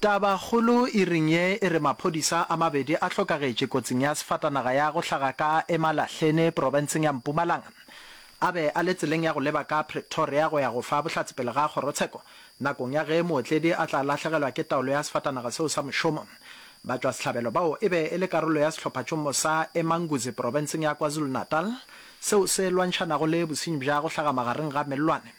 Tabakgolo iring ye e re maphodisa a mabedi a hlokagetše kotsing ya sefatanaga ya go hlaga ka Emalahleni profenseng ya Mpumalanga a be a le tseleng ya go leba ka Pretoria go ya go fa bohlatse pele ga kgorotsheko nakong ya ge mootledi a tla lahlegelwa ke taolo ya sefatanaga seo sa mošomo. Batšwasehlabelo bao e be e le karolo ya sehlophatšomo sa Emanguzi profenseng ya KwaZulu-Natal seo se lwantšhanago le bosenyi bja go hlaga magareng ga mellwane.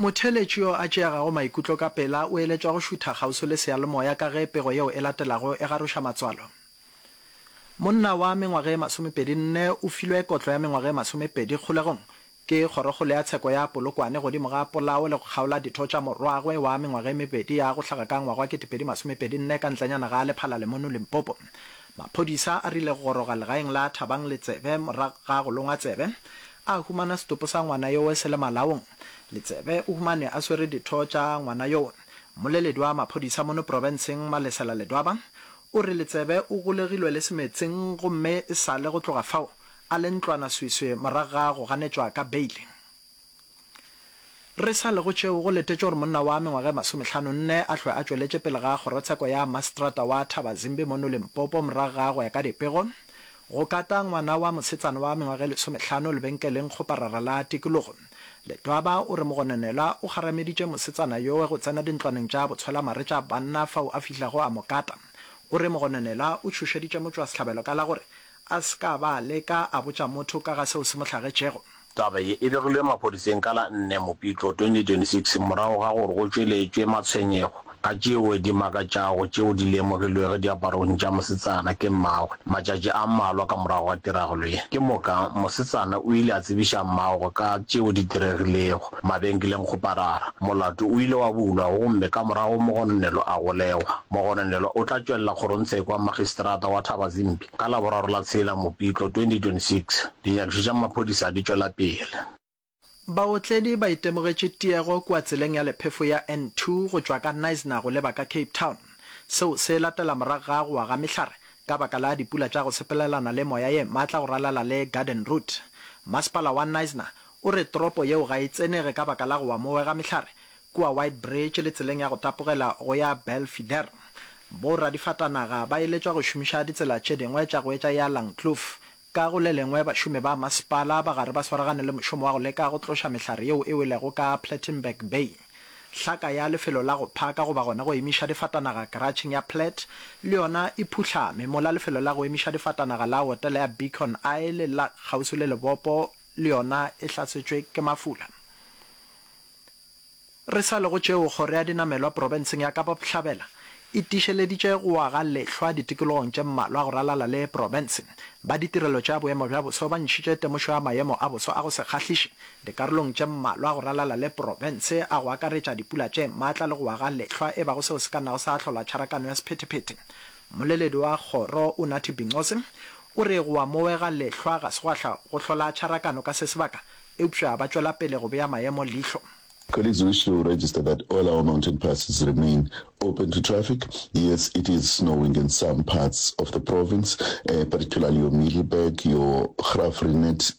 Motheeletši yo a tšeagago maikutlo ka pela o eletšwa go šutha kgauswi le seyalemoya ka ge pego yeo e latelago e garoša matswalo. Monna wa mengwaga e masomepedi nne o filwe kotlo ya mengwaga e masomepedi kgolegong ke kgorokgolo ya tsheko ya Polokwane godimo ga polao le go kgaola ditho tša morwagwe wa mengwaga e mebedi ya go hlaga ka ngwaga wa ketepedi masomepedi nne ka ntlenyana ga Lephala Lemonu Limpopo. Maphodisa a rile go goroga legaeng la Thabang Letsebe morago ga go longwa tsebe A humana setopo sa ngwana yowe se le malaong. Letsebe o humanwe a swere ditho tša ngwana yowe. Mmoleledi wa maphodisa mono profenseng Malesela Ledwaba o re Letsebe o golegilwe le semetseng gomme e sa le go tloga fao a le ntlwana sweswe morago ga go ganetšwa ka beile. Re sa le go tšeo, go letetšwe gore monna wa mengwaga e masomehlano nne a hlwe a tšweletše pele ga kgorotsheko ya maseterata wa Thabazimbi mono Limpopo morago ga go ya ka dipego go kata ngwana wa mosetsana wa mengwaga e lesomehlano lebenkeleng kgoparara la tikologo. Letwaba o re mogononelwa o kgarameditše mosetsana yowe go tsena dintlwaneng tša botshwelamare tša banna fao a fihlago a mo kata. O re mogononelwa o tšhošeditše motšwasehlabelo ka la gore a se ka ba a leka a botša motho ka ga seo se mo hlagetšego. Taba ye e begilwe maphodiseng ka la nne Mopitlo 2026 morago ga gore go tšweletšwe matshwenyego ka tšeo di makatšago tšeo di lemogilwego diaparong tša mosetsana ke mmagwe. Matšatši a mmalwa ka morago ga tiragalo ye, ke moka mosetsana o ile a tsebiša mmagwe ka tšeo di diregilego. mabenkeleng go parara. Molato o ile wa bulwa gomme ka morago mogononelwa a golegwa. Mogononelwa o tla tšwelela kgorongtshekwa Magistrata wa Thabazimbi ka Laboraro la tshela Mopitlo 2026. Dinyakišo tša maphodisa di tšwela pele. Baotledi ba itemogetše tiego kua tseleng ya lephefo ya N2 go tšwa ka Knysna go leba ka Cape Town. Seo se latela morago ga go wa ga mehlare ka baka la dipula tša go sepelelana le moya ye matla go ralala le Garden Route. Masepala wa Knysna O re toropo yeo ga e tsenege ka baka la go wa mowe ga mehlare kua White Bridge le tseleng ya go tapogela go ya Belfidere. Bo radifatanaga ba eletšwa go šomiša ditsela tše dingwe tša go etša ya Langkloof. Ka go le lengwe bašomi ba masepala ba gare ba swaragane le mošomo wa go leka go tloša mehlare yeo e welego ka Plettenberg Bay. Hlaka ya lefelo la go phaka goba gona go emiša difatanaga karatšheng ya Platt le yona e phuhlame, mola lefelo la go emiša difatanaga la otele ya Beacon Isle la kgauswi le lebopo le yona e hlasetšwe ke mafula. Re sa le go tšeo, Kgoro ya Dinamelwa Profenseng ya Kapa Bohlabela e tiišeleditše go aga lehlwa ditikologong tše mmalwa go ralala le profense. Ba ditirelo tša boemo bja boso ba ntšhitše temošo ya maemo a boso a go se kgahliše dikarolong tše mmalwa go ralala le profense a go akaretša dipula tše maatla le go aga lehlwa e bago seo se ka nnago sa ahlola tšharakano ya sephetephete. Mmoleledi wa kgoro, Unathi Bingcosi, O re go a mowega lehlwa ga se gwa hla go hlola tšharakano ka se sebaka, eupša ba tšwela pele go bea maemo leihlo. Colleagues wish to register that all our mountain passes remain open to traffic. Yes, it is snowing in some parts of the province, particularly your Mealyberg, your Graaff-Reinet,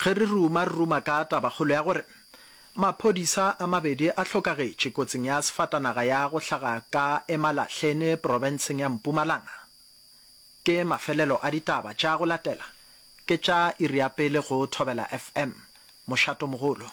Ge re ruma, re ruma ka tabakgolo ya gore maphodisa a mabedi a hlokagetše kotsing ya sefatanaga ya go hlaga ka Emalahleni profenseng ya Mpumalanga. Ke mafelelo a ditaba tša go latela, ke tša iri ya pele go Thobela FM, Mošatomogolo.